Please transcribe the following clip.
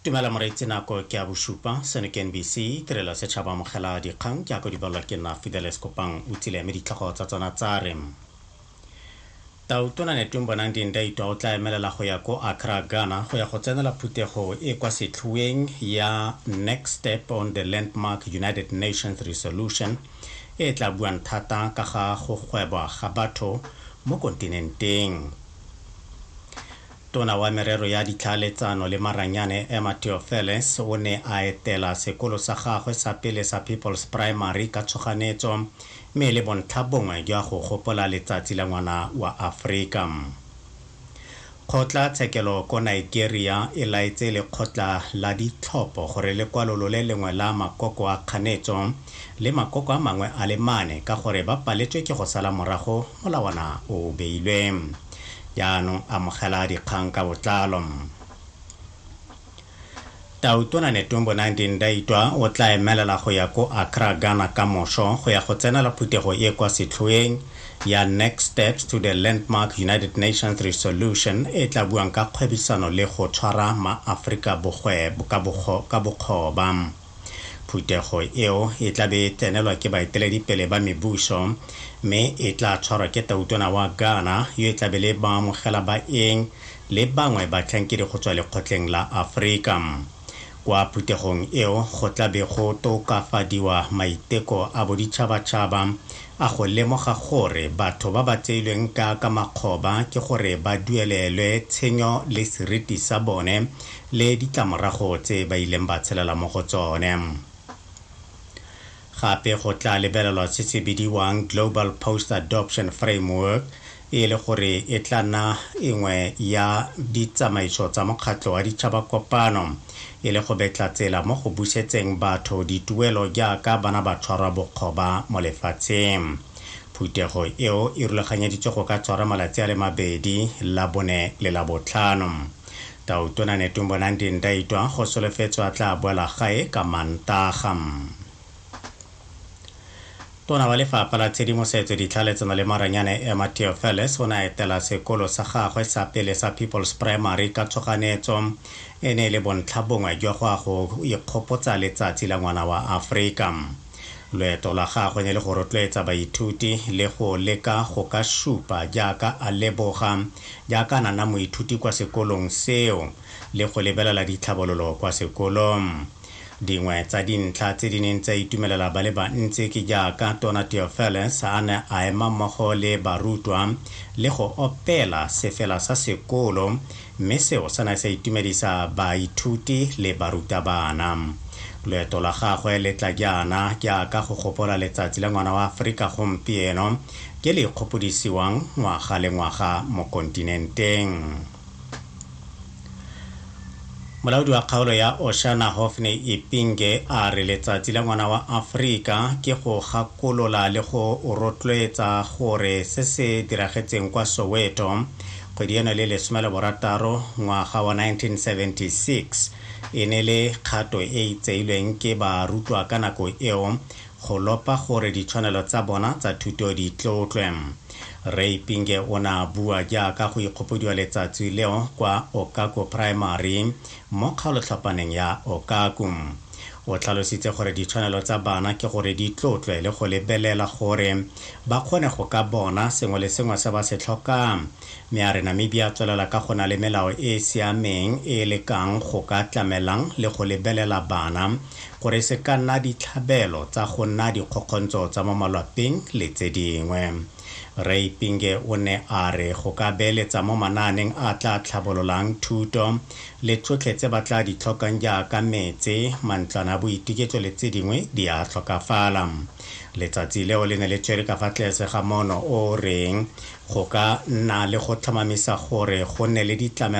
Dumela moreetsi nako ke ya bosupa seno ke NBC tirelo ya setšhaba amogela dikgang ke ya ko di balwa ke nna Fidelis Kopang o tsile mme ditlhogo tsa tsona tsa re Tautona Netweng Bonang Dindaitwa o tla emelela go ya ko Accra Ghana go ya go tsenela phuthego e kwa setlhuweng ya Next Step on the Landmark United Nations Resolution e tla buang thata ka ga go gwebwa ga batho mo kontinenteng Tona wa Merero ya Ditlhaeletsano le Maranyane Emma Theofeles o ne a etela sekolo sa gagwe sa pele sa People's Primary ka tshoganetso mme e le bontlhabongwe jwa go gopola letsatsi la ngwana wa Aforika. Kgotla tshekelo ko Nigeria e laetse lekgotla la ditlhopho gore le kwalolole lengwe la makoko a kganetso le makoko a mangwe a le mane ka gore ba paletswe ke go sala morago molawana o beilwe. Jaanong amogela dikgang ka botlalo. Tautona Netumbo Nandi Ndaitwa o tla emelela go ya ko Accra, Ghana ka moso go ya go tsenela phuthego e kwa setlhoeng ya Next Steps to the Landmark United Nations Resolution e tla buang ka kgwebisano le go tshwara ma-Aforika ka bokgoba. Phuthego eo e tla be e tsenelwa ke baeteledipele ba mebuso mme e tla tshwarwa ke Tautona wa Ghana yo e tla be le baamogela baeng le bangwe batlhankedi go tswa lekgotleng la Aforika. Kwa phuthegong eo go tla be go tokafadiwa maiteko a boditšhabatšhaba a go lemoga gore batho ba ba tseilweng ka ka makgoba ke gore ba duelelwe tshenyo le seriti sa bone le ditlamorago tse ba ileng ba tshelela mo go tsone. Gape go tla lebelelwa se se bidiwang Global Post Adoption Framework e le gore e tla nna engwe ya ditsamaiso tsa Mokgatlho wa Ditšhaba Kopano e le go betla tsela mo go busetseng batho dituelo jaaka bana ba tshwarwa bokgoba mo lefatsheng. Phuthego eo e rulaganyeditswe go ka tshwara malatsi a le mabedi, Labone le Labotlhano. Tautona Netumbo Nandi Ndaitwa go solofetswe a tla boela gae ka Mantaga. Tona wa Lefapha la Tshedimosetso, Ditlhaeletsano le Maranyane Emma Theofelus o ne a etela sekolo sa gagwe sa pele sa People's Primary ka tshoganyetso e ne e le bontlhabongwe jwa go ya go ikgopotsa letsatsi la ngwana wa Aforika. Loeto la gagwe ne le go rotloetsa baithuti le go leka go ka supa jaaka a leboga jaaka a na nna moithuti kwa sekolong seo le go lebelela ditlhabololo kwa sekolong. Dingwe tsa dintlha tse di neng tsa itumelela ba le bantsi ke jaaka Tona Theofelus a ne a ema mmogo le barutwa le go opela sefela sa sekolo mme seo sa ne sa itumedisa baithuti le barutabana. Loeto la gagwe le tla jaana jaaka go gopola Letsatsi la Ngwana wa Aforika gompieno ke le ikgopodisiwang ngwaga le ngwaga mo kontinenteng. Molaodi wa kgaolo ya Oshana Hophne Ipinge a re Letsatsi la Ngwana wa Aforika ke go gakolola le go rotloetsa gore se se diragetseng kwa Soweto Kgwedi ena le lesome le borataro ngwaga wa 1976 e ne le kgato e e tseilweng ke barutwa ka nako eo go lopa gore ditshwanelo tsa bona tsa thuto di tlotlwe. Rre Ipinge o ne a bua jaaka go ikgopodiwa letsatsi leo kwa Okako Primary mo kgaolotlhapaneng ya Okaku. O tlhalositse gore ditshwanelo tsa bana ke gore di tlotlwe le go lebelela gore ba kgone go ka bona sengwe le sengwe se ba se tlhokang, mme a re Namibia a tswelela ka go na le melao e e siameng e e lekang go ka tlamelang le go lebelela bana gore e se ka nna ditlhabelo tsa go nna dikgokgontso tsa mo malwapeng le tse dingwe. Rre Ipinge o ne a re go ka beeletsa mo manaaneng a a tla tlhabololang thuto le tsotlhe tse ba tla di tlhokang jaaka metse, mantlwana a boituketso le tse dingwe di a tlhokafala. Letsatsi leo le ne le tshwere ka fa tlese ga moono o o reng go ka nna le go tlhomamisa gore go nne le ditlamelo